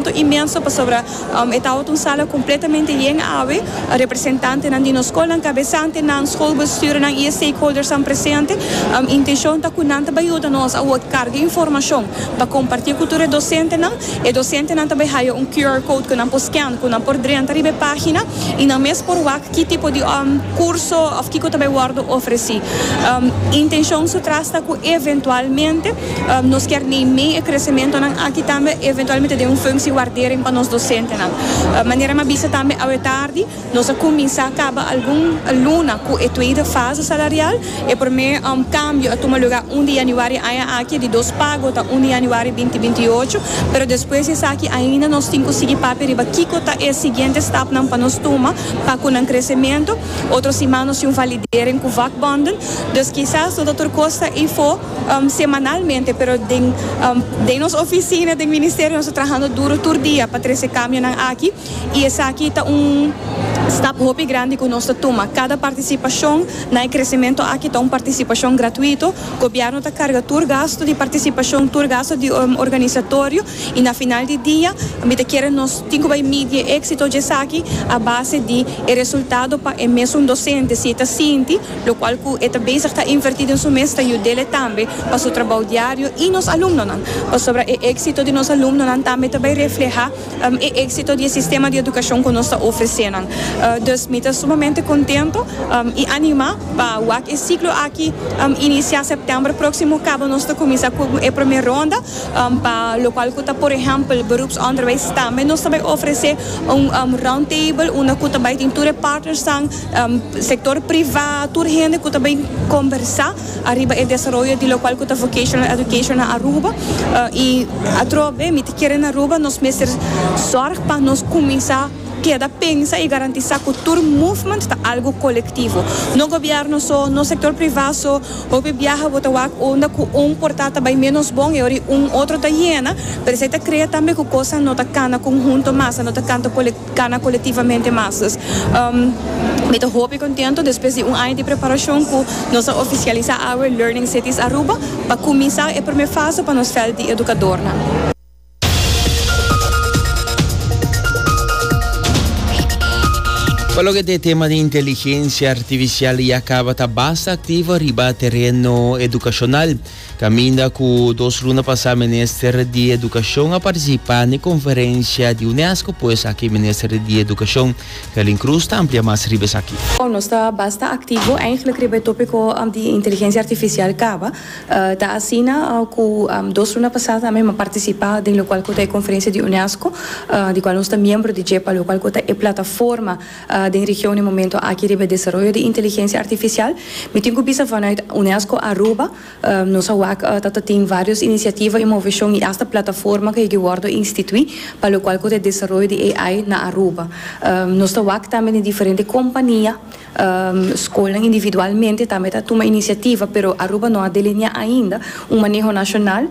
Contentu inmenso pasobra e tawath un sala completamente yen awe, representantenan di nos scolnan, cabesantenan, scolbestuurnan y e stakeholdersnan presente. Intencion ta cu nan ta bay yuda nos a word carga informacion pa comparti cu tur e docentenan. E docentenan ta bay haya un QR code cu nan por scan, cu nan por drenta riba e pagina y nan mes por wak ki tipo di curso of kico ta bay wordo ofreci. Intencion su tras ta cu eventualmente. Nos kier nei mei e kresimentonan aki tambe eventualmente den un funksie wardering pa nos dosentenan. Manera mi a bisa tambe awe tardi, nos a kuminsá kaba algun luna ku e tweede fase salarial. E promé kambio a tuma lugá un di yanüari aña aki, di dos pago ta un di yanüari binti binti i ocho, pero despues di esaki ainda nos tin ku sigui papia riba kiko ta e siguiente stapnan pa nos tuma pa ku nan kresemento. Otro siman nos tin un validering ku vakbonden, dus kisas no ta tur kos ta ifo. semanalmente, pero den den nos oficina den ministerio nos ta trahando duro tur dia pa trece camionan aki y esaki ta un stap hopi grandi cu nos ta tuma, cada participacion na e crecemento aki ta un participacion gratuito, gobierno ta carga tur gasto di participacion, tur gasto di organisatorio y na final di dia mi ta kere nos tin cu bay midi e exito dje esaki a base di e resultado pa e mesun docente si e ta sinti. lokual ku e ta bezig ta invertí den su mes ta yud'e tambe pa su trabou diario i nos alumnonan, pasobra e éksito di nos alumnonan tambe ta bai reflehá e éksito di e sistema di edukashon ku nos ta ofresé nan. Dus mi ta sumamente kontento i animá pa wak e siklo aki inisiá sèptèmber próksimo kaba nos ta kuminsá ku e promé ronda pa lokual ku ta por ehèmpel beroepsonderwijs tambe nos ta bai ofresé un roundtable unda ku ta bai tin tur e partnersnan sector priva, tur hende cu ta bay combersa ariba e desaroyo di locual cu ta Vocational Education na Aruba. Y atrobe mi ta kere na Aruba nos mester zorg pa nos cuminsa keda pensa y garantisa cu tur movement ta algo colectivo. No gobierno so, no sector priva so. Hopi biaha bo ta wak unda cu un porta ta bay menos bon y ora y un otro ta yena. Pero esey ta crea tambe cu cosnan no ta cana conhunto mas, no ta canta colectivo. Cana colectivamente mas dus. Mi ta hopi contento despues di un aña di preparacion cu nos a oficialisa awe Learning Cities Aruba pa cuminsa e prome fase pa nos veld di educadornan. Pa loke ta e tema di inteligencia artificial ya caba ta basta activo riba tereno educacional. Caminda cu dos luna pasá Minister di Educacion a participá n'e conferencia di UNESCO pues aki Minister di Educacion, Carlin Cruz ta amplia mas riba esaki. Nos ta basta activo eigenlijk riba e topico di inteligencia artificial caba. Ta asina cu dos luna pasá ta mi a participá den locual cu ta e conferencia di UNESCO di cual nos ta miembro di dje pa locual cu ta e plataforma Den region e momento aki riba e desaroyo di inteligencia artificial. Mi tin cu bisa vanuit UNESCO Aruba nos a wak ta ta tin varios iniciativa y movecion y hasta plataforma cu yigi wordo institui pa locual cu ta e desaroyo di AI na Aruba. Nos ta wak tambe den diferente compania, scolnan individualmente tambe ta tuma iniciativa pero Aruba no a delinea ainda un maneho nacional.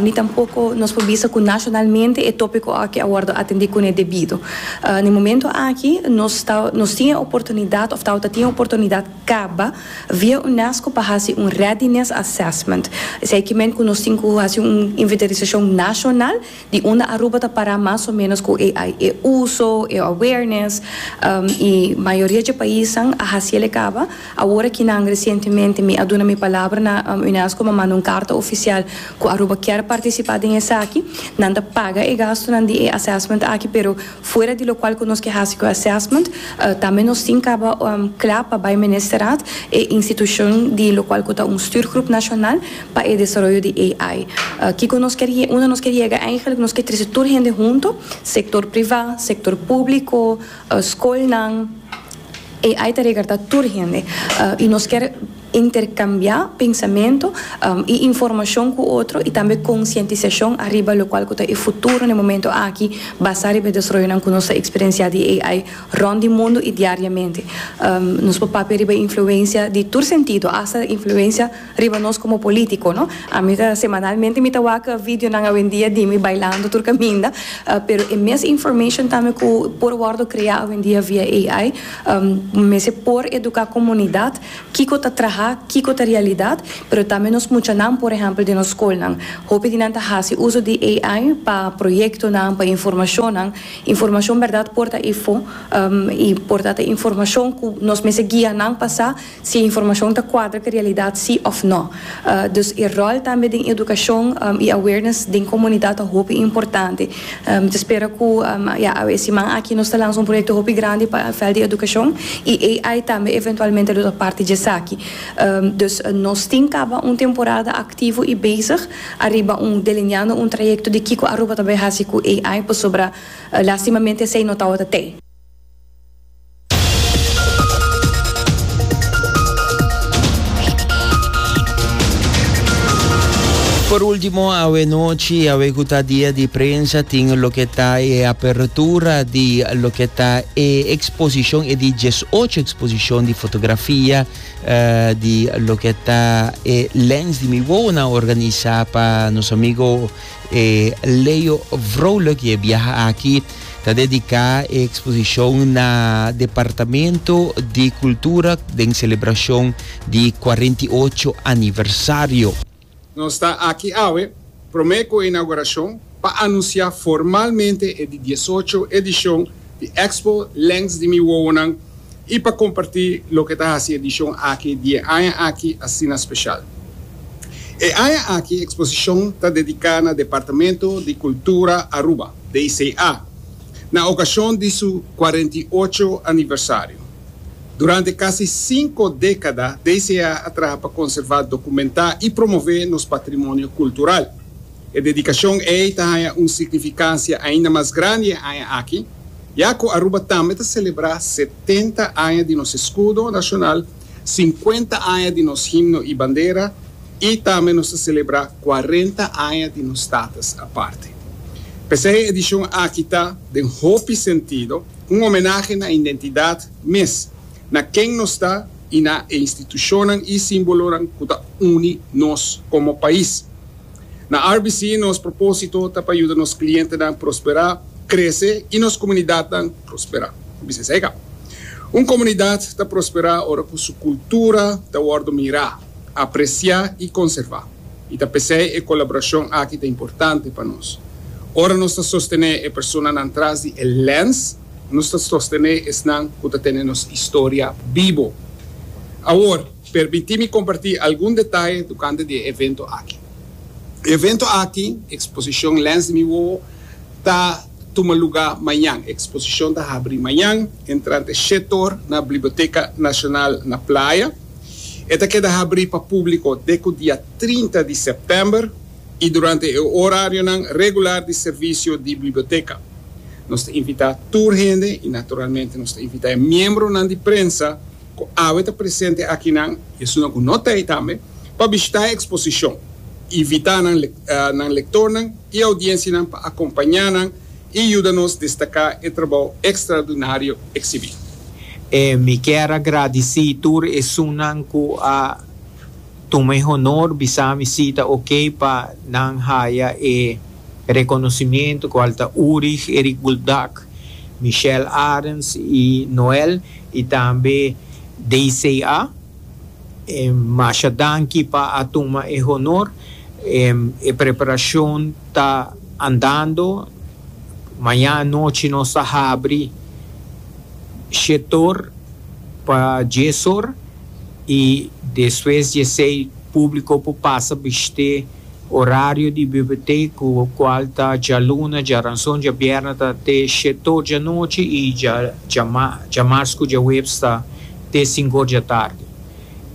ni tampoko nos por bisa cu nacionalmente e topico aki a wordo atendi cune debido. Na e momento aki nos ta, nos tin e oportunidad of tabata tin e oportunidad caba via UNESCO pa haci un readiness assessment. Esey kimen cu nos tin cu haci un inventarisacion nacional di unda Aruba ta para mas o menos cu e e uso, e awareness, y mayoria dje paisnan a haciele caba. Awor aki nan resientemente mi a duna mi palabra na Unesco, mi a manda un karta ofisial ku Aruba kier partisipá den esaki. Nan ta paga e gastunan di e assessment aki pero fuera di lokual ku nos ke hasi ku e assessment tambe nos tin kaba kla pa bai Ministerat, e institushon di lokual ku ta un stuurgroep nashonal pa e desaroyo di AI. Kiko nos kier yega? Unda nos kier yega eigentlik nos kier trese tur hende huntu, sektor privá, sektor públiko, skolnan, AI ta regarta tur hende y nos kier intercambia pensamento y informacion cu otro y tambe concientisacion ariba locual cu ta e futuro na e momento aki basa riba e desaroyonan cu nos ta experiencia di AI rond di mundo y diariamente. Nos por papia riba e influencia di tur sentido, hasta e influencia. Riba nos como politico no. Ami ta semanalmente mi ta waka videonan awendia di mi bailando tur caminda pero e mes information tambe cu por wordo crea awendia via AI mester por educa comunidad kico ta traha kico ta realidad pero tambe nos muchanan por ehempel den nos scolnan hopi di nan ta haci uso di AI pa proyectonan pa informacionnan informacion berdad por ta efo y por ta ta informacion cu nos mester guia nan pa sa Si e informashon ta kuadra ku e realidat si òf nò. Dus e ròl tambe den edukashon i awareness den komunidat ta hopi importante. Mi ta spera ku ya e siman aki nos ta lansa un proyekto hopi grandi pa e vèlt di edukashon i AI tambe eventualmente lo ta parti dje esaki. Dus nos tin kaba un temporada aktivo i bezig ariba un delineando un trayekto di kiko Aruba ta bai hasi ku AI pasobra lastimamente esei no tabata t'ei. Por último, awe nochi, awe ku ta dia di prensa, tin loke ta e apertura di loke ta e eksposishon, e di 18 eksposishon di fotografia di loke ta e Lens di mi Wowonan organisa pa nos amigo E Leo Vrolijk y e biaha aki ta dedica e exposición na Departamento di Cultura den celebracion di cuarenta y ocho aniversario. Nos ta aki awe prome cu e inauguracion pa anuncia formalmente e di diesocho edicion di Expo Lens di Mi Wowonan i pa kompartí loke ta hasi edishon aki di e aña aki asina speshal. E aña aki e eksposishon ta dediká na Departamento di Kultura Aruba, DCA, na okashon di su kuarenta i ocho aniversario. Durante kasi sinku dékada DCA a traha pa konservá, dokumentá i promové nos patrimonio kultural. E dedikashon ei ta haña un signifikansia ainda mas grandi e aña aki. Ya cu Aruba tambe ta celebra setenta aña di nos escudo nacional, cincuenta aña di nos himno y bandera y tambe nos ta celebra cuarenta aña di nos Status aparte. P'esey edicion aki ta, den hopi sentido, un homenahe na identidad mes, na ken nos ta y na e institucionnan y simbolonan cu ta uni nos como pais. Na RBC nos propósito ta pa yuda nos klientenan prosperá, krese i nos komunidatnan prosperá. Ku bisnis ei ka? Un komunidat ta prosperá ora ku su kultura ta wòrdu mirá, apresiá i konservá. I ta p'esei e kolaborashon aki ta importante pa nos. Ora nos ta sostené e personanan tras di e lèns, nos ta sostené esnan ku ta tene nos historia bibo. Awor. Permití mi kompartí algun detaye tokante di e evento aki. E evento aki, Eksposishon Lens di mi Wowo, ta tuma lugá mañan. E eksposishon ta habrí mañan entrante shet or na Bliboteka Nashonal na Playa. E ta keda habrí pa públiko dek ku dia trinta di sèptèmber i durante e orarionan regular di servisio di Bliboteka. Nos ta invitá tur hende i naturalmente nos ta invitá e miembronan di prensa ku awe ta presente akinan i esunnan ku no ta ei tambe, pa bishitá e eksposishon. Invitá nan nan lektornan i audiensianan pa akompañá nan i yuda nos destaká e trabou ekstraordinario eksibí. Mi kier a gradisí tur esunnan ku a tuma e honor bisá mi si ta okey pa nan haya e rekonosimiento, kual ta Urig, Erik Buldak, Michelle Arends i Noel. Y tambe DCA, masha danki pa a tuma e honor. E preparacion ta andando. Maña anochi nos ta habri shetor pa diesor y despues diesei publico por pasa bishte. Orario di bibetec cu cual ta djaluna, djaranson, djabierna ta te shet'or djanochi y djama djamars cu djaweps ta te sink'or djatardi.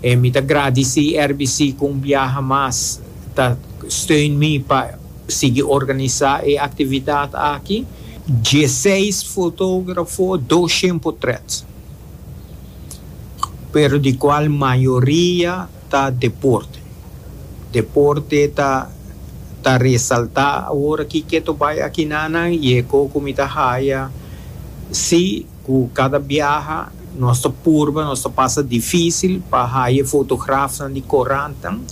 E mi ta gradici RBC cu un biaha mas ta steun mi pa sigui organisa e actividad aki. Dieseis fotografo, doshent potret, pero di cual mayoria. ta deporte. Deporte ta ta resalta awor aki keto bai aki nanan y e co cu mi ta haya si cu cada biaha nos ta purba nos ta pasa dificil pa haya e fotografnan di corantnan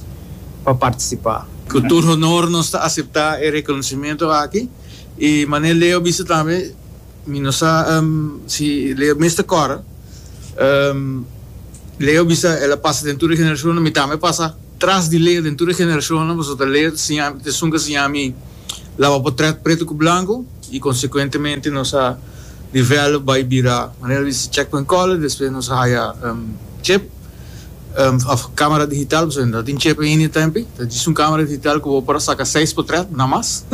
pa participa. Cu tur honor nos ta acepta e reconocimiento aki y Manel Leo bisa tambe. Mi no sa si Leo mester kòrè. Leo bisa el a pasa den tur e generashonnan. Mi tambe a pasa tras di Leo den tur e generashonnan, pasobra ta Leo ta siña, esun ta siña mi laba potrèt pretu ku blanku i konsekuentemente nos a develop bai bira manera di checkpoint college, despues nos a haya chip. of camera digital pasobra no ta tin chip ainda e tempi ta djis un camera digital cu bo por a saca seis potret na mas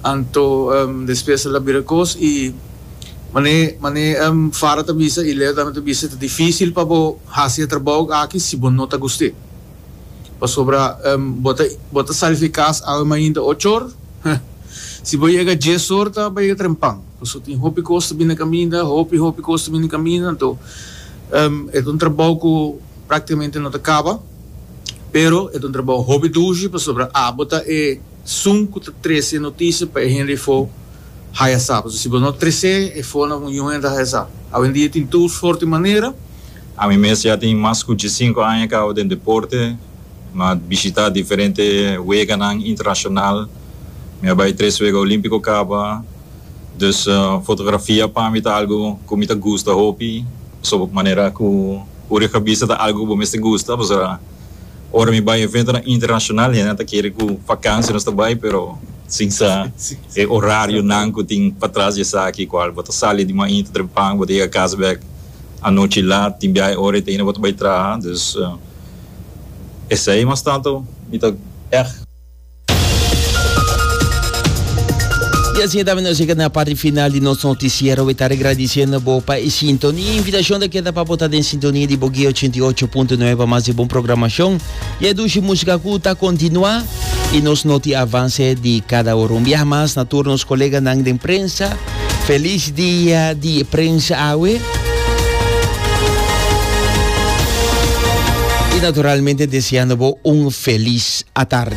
anto despues ela bira cos y mane mane Farah ta bisa y Leo tambe ta bisa ta dificil pa bo haci e trabao aki si bo no ta guste pasobra bo ta bo ta sali di cas awe mainta ocho or si bo yega dies or ta bay yega trempan pasobra tin hopi cos ta bini caminda hopi hopi cos ta bini caminda anto E ta un trabou ku praktikamente no ta kaba, pero e ta un trabou hopi dushi pasobra abo ta e sun ku ta trese e notisia pa e hende afó haya sa. Pasobra si bo no tres'é afó na un yuhende ta haya sa. Awendia tin tur sorti manera. Ami mes ya tin mas ku diesinku aña kaba den deporte. Mi a bishitá diferente weganan internashonal. Mi a bai tres wega olímpiko kaba. Dus fotografia pa mi ta algu ku mi ta gusta hopi pasobra ku manera ku uri ku a bista ta algu ku bo mester gusta pasobra ora mi bai eventonan internashonal hende nan ta kere ku vakansia nos ta bai pero sin sa e orarionan ku tin patras di esaki kual bo ta sali di mainta trempan bo ta yega kas bek anochi lat tin biaha e ora e ta hina bo ta bai traha dus esei mas tantu mi ta ègt. Y asina tambe nos llega na parti final di nos noticiero. We ta regradiciendo bo pa e sintonia. Invitacion ta keda pa bo ta den sintonia di Bogué 88.9 pa mas di bon programacion. Y e dushi música cu ta continua. Y nos noti avance di cada ora. Un biaha mas na tur nos coleganan den prensa. Feliz dia di prensa awe. Y naturalmente deseando bo un feliz atarde.